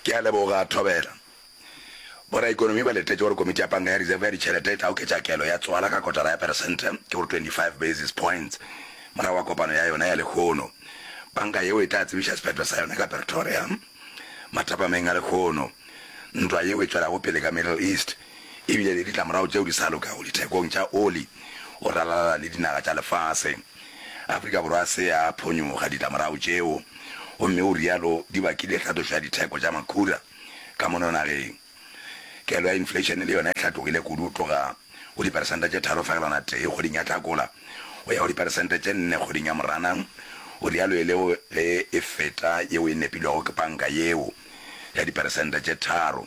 Ke a leboga, Thobela. Boraikonomi ba letetše gore Komiti ya Panka ya Reserve ya Ditšhelete e tla oketša kelo ya tswala ka kotara ya peresente, ke go re 25 basis points, morago ga kopano ya yona ya lehono. Panka yeo e tla tsebiša sephetho sa yona ka Pretoria. Mathapameng a lehono, ntwa yeo e tšwelago pele ka Middle East, e bile le ditlamorago tšeo di sa lokago dithekong tša oli go ralala le dinaga tša lefase. Afrika Borwa se a phonyoga ditlamorago tšeo gomme o rialo di bakile tlhatlošo ya ditheko tša makhura ka mono nageng. Kelo ya infleišene le yona e hlatlogile kudu go tloga go diperesente tše tharo fegelwana tee kgweding ya Hlakola go ya go diperesente tše nne kgweding ya Moranang, o rialo e le ge e feta yeo e nepilwego ke panka yeo ya diperesente tše tharo.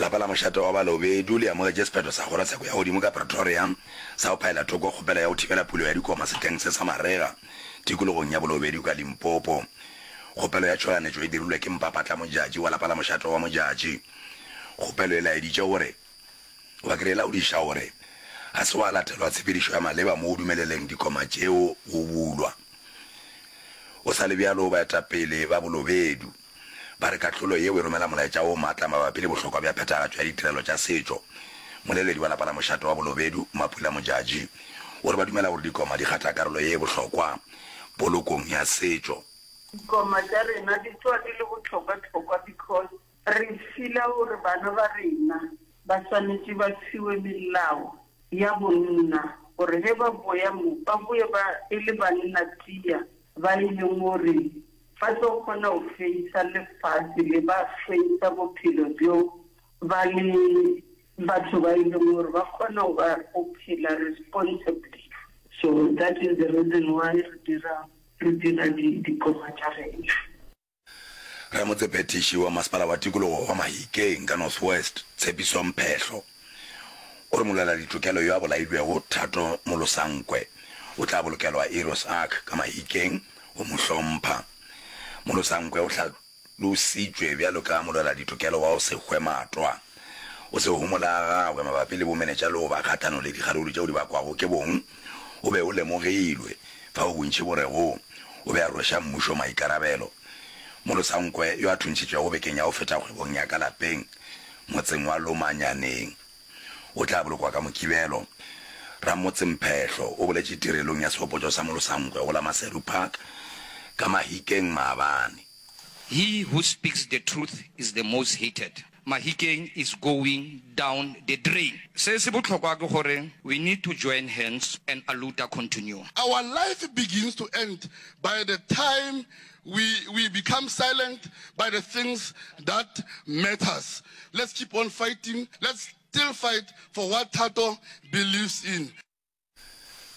Lapa la mošate wa Balobedu le amogetše sephetho sa kgorotsheko ya godimo ka Pretoria sa go phaela thoko kgopelo ya go thibela pulo ya dikoma sehleng se sa marega tikologong ya Bolobedu ka Limpopo. Kgopelo ya tšhoganetšo e dirilwe ke Mpapatla Modjadji wa lapa la mošate wa Modjadji. Kgopelo e laeditše gore wa kry laodiša gore ga se wa latelwa tshepedišo ya maleba mo go dumeleleng dikoma tšeo go bulwa. Go sa le bjalo, baetapele ba Bolobedu, Ba re kahlolo yeo e romela molaetša o matla mabapi le bohlokwa bja phethagatšo ya ditirelo tša setšo. Moleledi wa lapa la mošate wa Bolobedu, Mapula Modjadji, o re ba dumela gore dikoma di kgatha karolo ye e bohlokwa polokong ya setšo. Dikoma tša rena di tloga di le bohlokwa-hlokwa because re feel-a gore bana ba rena ba swanetše ba fiwe melao ya bonna gore ge ba boya mo, ba boye ba e le banna tia ba e leng gore Ba tlo kgona go hweisa lefase le ba hweisa bophelo bjo ba le batho ba e leng gore ba kgona go ba go phela responsibly. So that is the reason why re dira re dira di dikoma tša rena. Ramotsephetiši wa Masepala wa Tikologo wa Mahikeng ka North West, Tshepiso Mphehlo, O re molweladitokelo yo a bolailwego, Thato Molosankwe, o tla bolokelwa Heroes Ark ka Mahikeng go mo hlompha. Molosankwe o hlalositšwe bjalo ka molweladitokelo wa go se hwe matwa. O se homola ga gagwe mabapi le bomenetša le go ba kgahlano le dikgaruru tšeo di bakwago ke bong o be o lemogilwe, fao bontši bo rego o be a rweša mmušo maikarabelo. Molosankwe, yo a thuntšhitšwego bekeng ya go feta kgwebong ya ka lapeng, motseng wa Lomanyaneng o tla bolokwa ka Mokibelo. Ramotse Mphehlo o boletše tirelong ya sehopotšo sa Molosankgwe go la Maseru Park ka Mahikeng maabane. He who speaks the truth is the most hated. Mahikeng is going down the drain. Se se bohlokwa ke gore we need to join hands and Aluta continue. Our life begins to end by the time We we become silent by the things that matters. Let's keep on fighting. Let's still fight for what Thato believes in.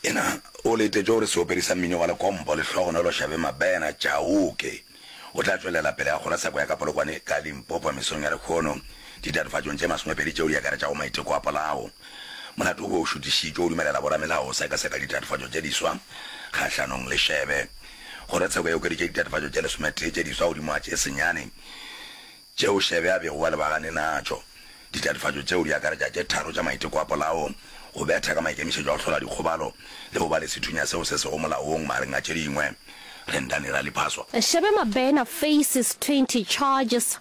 Ena o letetšwe gore seopedi sa mmino wa lekompo Lehlogonolo Shabe Mabena, Chauke, o tla tšwelela pele a kgora sako ya ka Polokwane ka Limpopo mesong ya lekgono ditatofatšong tše masomepedi tšeo di akaretšago maiteko a polao. Molato o be o šutišitšwe o dumelela boramelao go sekaseka ditatofatšo tše diswa kgahlanong le Shabe. Kgorotsheko e okeditše ditatofatšo tše lesometee tše diswa godimo ga tše senyane tšeo Shebe a bego a lebagane natšo. Ditatofatšo tšeo di akaretša tše tharo tša maiteko a polao, go betha ka maikemišetšo a go hlola dikgobalo le go ba le sethunya seo se sego molaong magareng a tše dingwe. Rendani Raliphaso. Shebe Mabena faces twenty charges.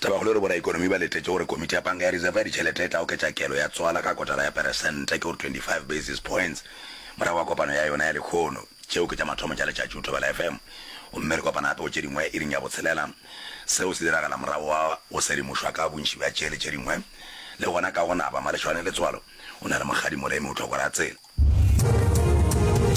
Tabakgolo e re boraekonomi ba letetše gore Komiti ya Panka ya Reserve ya Ditšhelete e tla oketša kelo ya tswala ka kotara ya peresente, ke gore 25 basis points, morago ga kopano ya yona ya lekhono. Tšeo ke tša mathomo tša letšatši go Thobela FM, gomme re kopana gape go tše dingwe iring ya botshelela. Seo se diragala morago ga go sedimošwa ka bontši bja tše le tše dingwe. Le gona ka go naba, Malešwane Letswalo o na le Mokgadi Molemi o tlo go ra tsela.